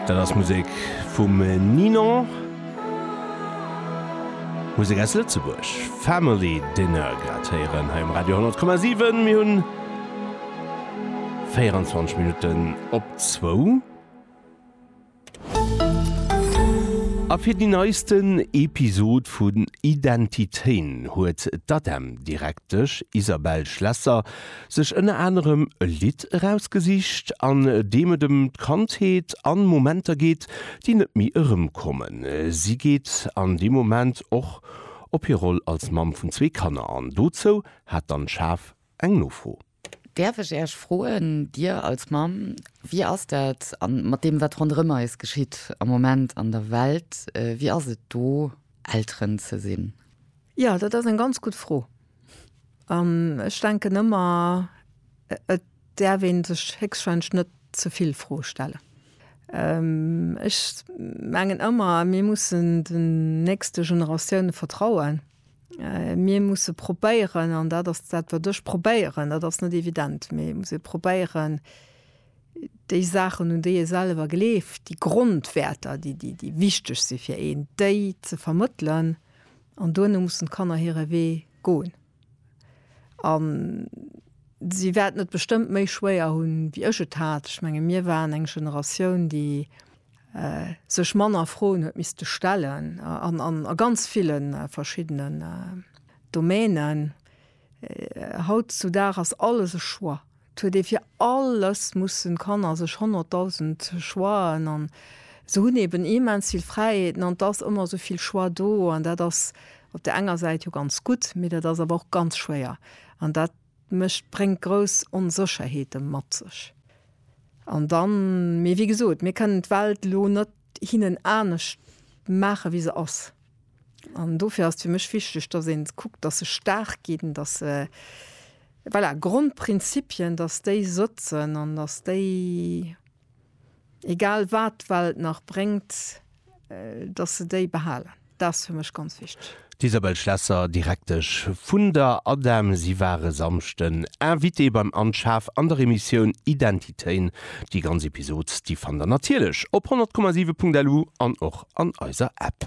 Dat ass Musek vum Ninon. Musek aus Lëtzebuerg. Family Dinner grad héieren hei um Radio 10,7. Mir hunn 24 Minutten op zwou. A fir déi neisten Episod vun Identité'n huet d'ADEM-Direktesch Isabelle Schlesser sech ënner anerem e Lidd erausgesicht, an deem et ëm d'Kandheet an Momenter geet, déi net méi erëmkommen. Si geet an deem Moment och op hir Roll als Mamm vun zwee Kanner an. Dozou hat d'Anne Schaaf eng Nofro. Däerf ech Äech froen, Dir als Mamm, wéi ass dat an mat deem wat ronderëm eis geschitt am Moment an der Welt, wéi ass et do Elteren ze sinn? Jo, dat ass eng ganz gutt Fro. An ech denken ëmmer, et däerf ee sech héchstwahrscheinlech net ze vill Froe stellen. Ech mengen ëmmer, mir mussen den nächste Generatioune vertrauen. Mir musse probéieren, an dat ass dat wat ech probéieren, dat ass net evident, mee et muss ee probéieren, déi Saachen, un déi ee selwer gleeft, déi Grondwäerter, déi wichteg si fir een, déi ze vermëttelen. An duerno mussen d'Kanner hire Wee goen. A si wäerten et bestëmmt méi schwéier hunn, wéi ech et hat. Ech menge mir waren eng Generatioun, déi sech manner Froen huet misste stellen an a ganz ville verschiddenen Domänen. Haut zu Dag ass alles e Choix. Et huet ee fir alles mussen Kanner sech honnertdausend Choixen an se hunn eben immens vill Fräiheeten an et ass ëmmer esou vill Choix do an dat ass op där enger Säit jo ganz gutt, mee dat ass awer och ganz schwéier an dat, Mécht, bréngt grouss Onsécherheete mat sech. An dann, mee wéi gesot, mir kënnen d'Welt elo net hinnen anescht maache wéi se ass. An dofir ass et fir mech wichteg, datt ee kuckt, datt se staark ginn, datt se, voilà, Grondprinzipien, datt déi sëtzen an datt déi Egal wat d'Welt nach bréngt, dass se déi behalen, dat ass fir mech ganz wichteg. D'Isabelle Schlesser, Direktesch vun der ADEM. Si war e Samschden Invitée beim Anne Schaaf an der Emissioun Identitéen. Déi ganz Episod, déi fannt der natierlech op 100,7.lu an och an eiser App.